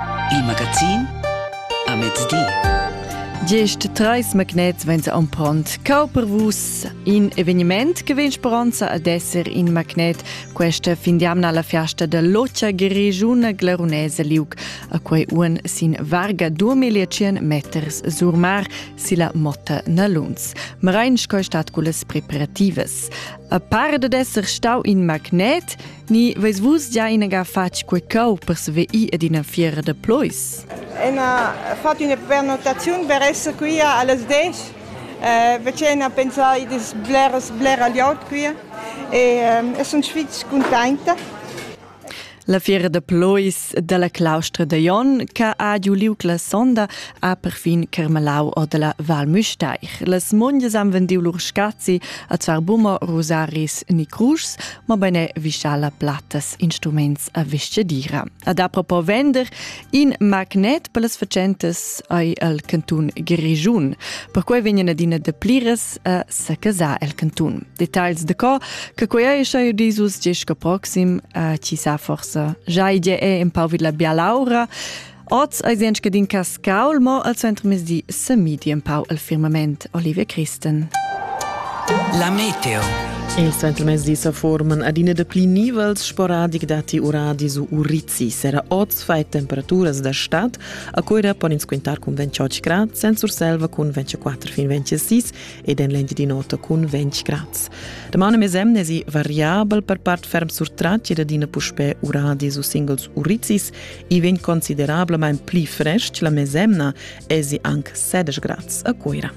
Il magazin a mezdi. Gest treis magnets vegn ampront cau per vus in eveniment che vegn speranza ad esser in magnet questa fin d'amna la fiasta da locia grigiuna glarunese liuc a quei uon sin varga 2500 meters sur mar si la motta Naluns. Marein sco stat culas preparativas. A par d'esser stau in magnet Ni veis vus già inaga fatg quei cau per sveir ed ina fiera da plois? Ina fatg una pernotaziun per esser qui allas desch. Eh, Vecena ha pensau id es bleras blera glieud qui e eh, sun fitg contenta. La fiera de plois dalla claustra de Jon che ha giu liug la sonda ha perfin Carmelau o della Val Müstair. Las monges han vendiu lur scazi a zvar bummer, rosaris ni cruschs ma bene vischa la plattas instruments a viscedira. Ad apropos vender, in magnet per las facentas ai al cantun Grigiun. Perquai vegnan adina de pliras a sacasar el cantun. Details de co, che quei ei schai disus gest proxim, a ci sa forsa già idea è un pau vid la bialaura. Oz eis en scadin cascaul mo al centrmezdi semidi empau el firmament Olivia Christen. La meteo. Il centrmezdi sa forman adina de pli nivels sporadic dati uradi su Urizi. Sera oz fai temperaturas da stad, a Coira pon ins quintar cun 28 grad, Sensurselva cun 24 fin 26 ed en l'Engiadinota cun 20 grad. Domani mesem nesi variabel per part ferm surtrati ed adina puspè uradi su singles Urizis i vegn considerablamain pli frestg la mesemna èsi anc 16 grads a Cuira.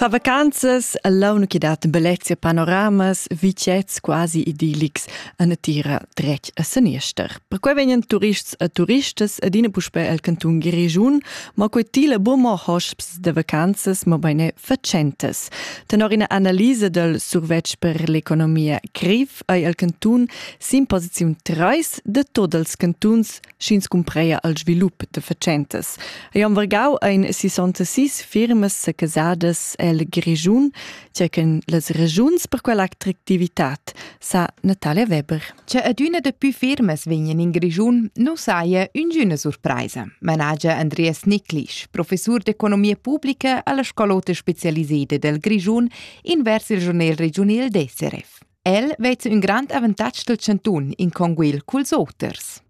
Fa vacanzas l'avna che dat bellezia panoramas, vitgets quasi idillics a natira dretg a saniester. Perquai vegnan turists e turistas adina puspè al cantun Grischun, ma quei tila bu mo hosps de vacanzas, ma beine fatschentas. Tenor ina analisa dal survetsch per l'economia grev ei el cantun sin posiziun 3 de tot els cantuns sch'ins cumpreia al svilup de fatschentas. Ei am vargau ein 66 firmas secasadas el Grischun, circa las regiuns per quell'attractivitat sa Natale Weber. Che adüna dapü firmas vegnan in Grischun nu saja üngüna surpraisa, managia Andreas Nicklisch, professur d'economia publica alla Scolota specialiseda del Grischun invers il giornal regiunal d'SRF. El vezza ün grand avantatg del chantun in conguil culs oters.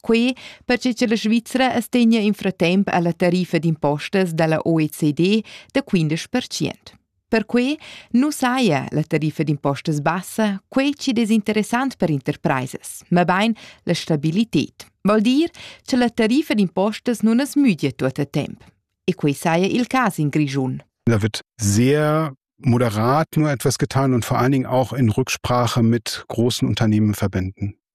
Quei perche che la Svizra astegna in fratemp alla tariffa d'impostas dalla OECD da 15%. Perquei nu saja la tariffa d'impostas bassa quei chi'd es interessant per interpraisas, ma bain la stabilited. Vol dir che la tariffa d'impostas nun as müdia tuot a temp. E quei saja il cas in Grischun. Da wird sehr moderat nur etwas getan und vor allen Dingen auch in Rücksprache mit großen Unternehmen verbinden.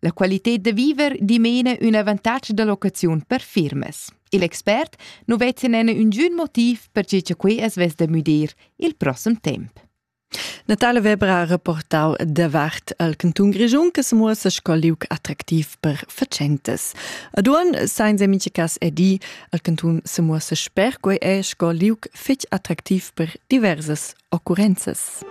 La qualitad da viver dimena ün avantatg da locaziun per firmas. Il expert nu vezza nena üngün motiv perche cha quei as vess da müdir il prossem temp. Natale Weber ha reportau davart al Canton Grischun che se muossa sco liug attraktiv per facentes. Ad un sainza mincha cas è di al Canton se muossa sper quei è sco liug fetg attraktiv per diversas occurrenzas.